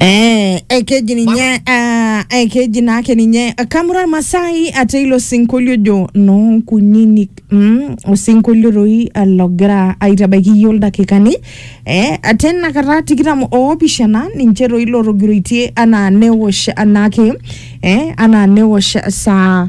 Eh, ekeji ninye ah, ekeji naake ninye kamura masai ate ilo sinkolio ojo noonkunyinyik mm, osinkolio toi ah, logira aitabaiki iyie oldakikani eh, ate inakata tikitam oopishana ninche toi lotogiroitie anaa newosh anaake eh, anaa newosh saa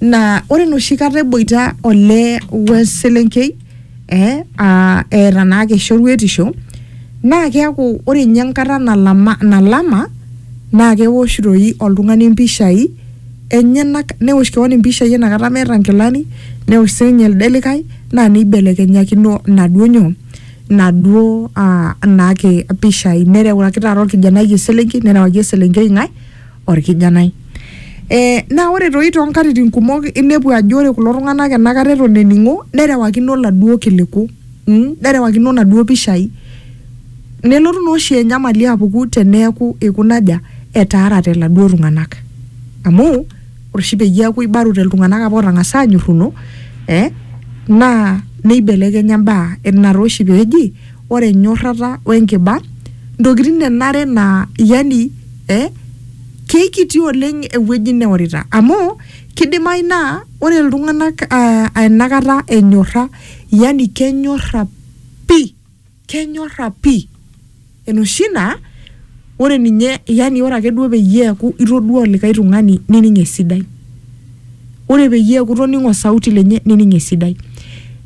naa ore enoshi kata eboita olee we selenkei eh, aa eeta naake shoruetisho naa keeku ore ninye enkata nalama, nalama naa kewosh doi oltung'ani impishai enyenak newosh kewon impishai enakata meeta inkilani newosh sininye elde likae naa neibelekenyakino inaduo nyoo inaduo uh, naake pishai nerewaki taata orkijanai eselenkei nerewaki eselenkei ng'ae orkijanai e, naa ore toi toonkatitin kumok inepu ajo ore kulo tung'anak enakata eton ening'o nerewakino laduo kiliku mm, nerewakino naduo pishai nelotu naa oshi enyamali apuku teneeku ikunaja etaarate laduo tung'anak amu ore oshi peyie eaku ibarute iltung'anak apa otang'asa anyorruno eh, naa neibelekenya imbaa ina taa oshi peeji ore enyorrata wenkiba ntokitin enare naa yani eh, keikiti oleng ewueji neorita amu kidimayu naa ore iltung'anak uh, enakata enyorra yani kenyorra pi kenyorra pi enoshi naa ore ninye yani ore ake duo peyie eeku itodua olikae tung'ani nining esidai ore peyie eeku itoning'o osauti lenye nining esidai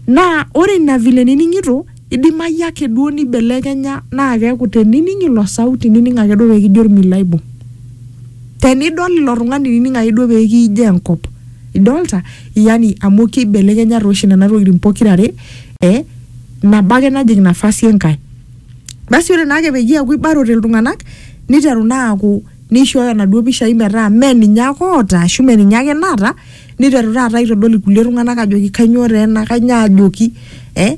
naa ore ina vile nining'ito Eidimayu ake duo neibelekenya naa keaku tenining ilo sauti nining ake duo pee kijo olmilo aibung. Tenidol ilo tung'ani nining ake duo pee kiijo enkop. Idolita? Yani amu keibelekenya taa oshi nena tokitin pokira are eh nabo ake najing nafasi enkae. Basi ore naake peyie eaku eibarote iltung'anak neiteru naa aaku neishooyo naduo pishai metaa mee ninye ake oota ashu mee ninye ake naata niteru taata aitodol irkulie tung'anak ajoki kanyoo taa ena kanyoo ajoki eh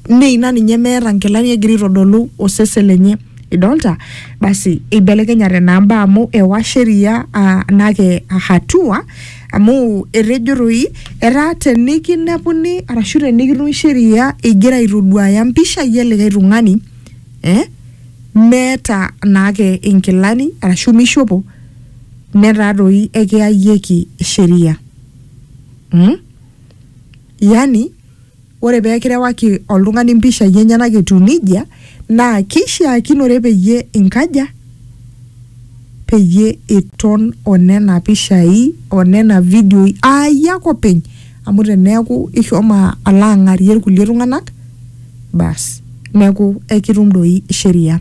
mee ina ninye meeta nkilani egira aitodolu osesen lenye idolta basi eibelekenyate naa mbaa amu ewa sheria ah, nake hatua amu etejo toi etaa tenikinepuni arashu tenikitum sheria igira aitoduaya mpishai elikae tung'ani eh meeta naake inkilani arashu mishopo netaa doi ekiyayieki sheria mm? yani ore peekirewaki oltung'ani mpishai enyenak etiu nijia naa keishiakinore peyie inkaja peyie iton onena pishai onena vidioi aayie ake openy amu teneeku ishomo alo ang'arie irkulie tung'anak basi neeku ekitum doi sheria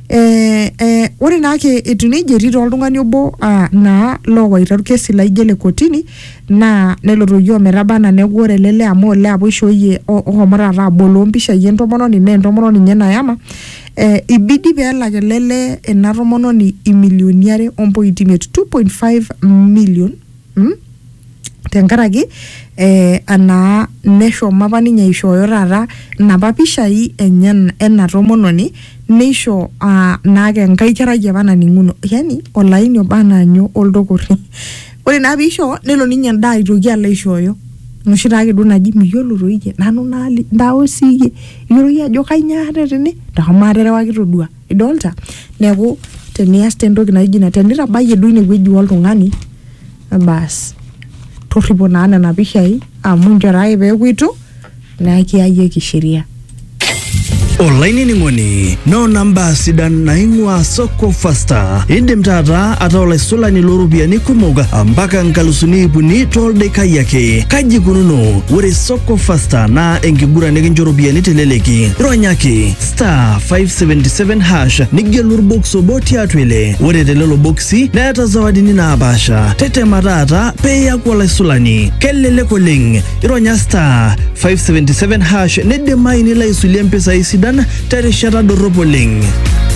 eh, eh, ore naake etiu nejia etii taa oltung'ani obo ah, naa loowaita orkesi laijo ele kotini naa nelotoyie ometaba anaa neeku ore ele lee amu olee apa oishooyie o- ohomo taata aboloo mpishai entomononi naa entomononi ninye nayama eh, ibidi peelak ele lee ena tomononi imilioni are ompointi imiet 2.5 million mm? tenkaraki eh, anaa neshomo apa ninye aishooyo taata inapa pishai enye ena tomononi neisho ah, naake enkae kerai apa naning'uno yani olaini oba anaanyo oldokorri ore naa piisho nelo ninye endaa aitoki alo aishooyo noshi taake duo naji miyiolo toi iyie nanu naali ntae sii iyie iyiolo iyie ajo kainyioo aata tene ntasho maaterewaki todua idolta neeku tenias te entoki naijo ina tenitabayie duo inewueji oltung'ani bas torripo naa nena pishai amu inchoo taa ake peeku itu naa ekiyayieki sheria olainining'oni noona mbaa sidan naing'uaa soko fasta indim taata ataa olaisulani looropiyiani kumok mpaka nkalusuni iip uni tooldakai ake kaji ikununo ore soko fasta naa enkiguran nikincho ropiyiani teleleki ronyaki star 577 hash nigelu orbox obo tiatua ile ore telelo boksi neeta zawadini naapaasha tetema taata pee iyaku olaisulani kelelek oleng ironya star 577 hash nidimayu nilo aisulie mpisai sidan terishata dorrop oleng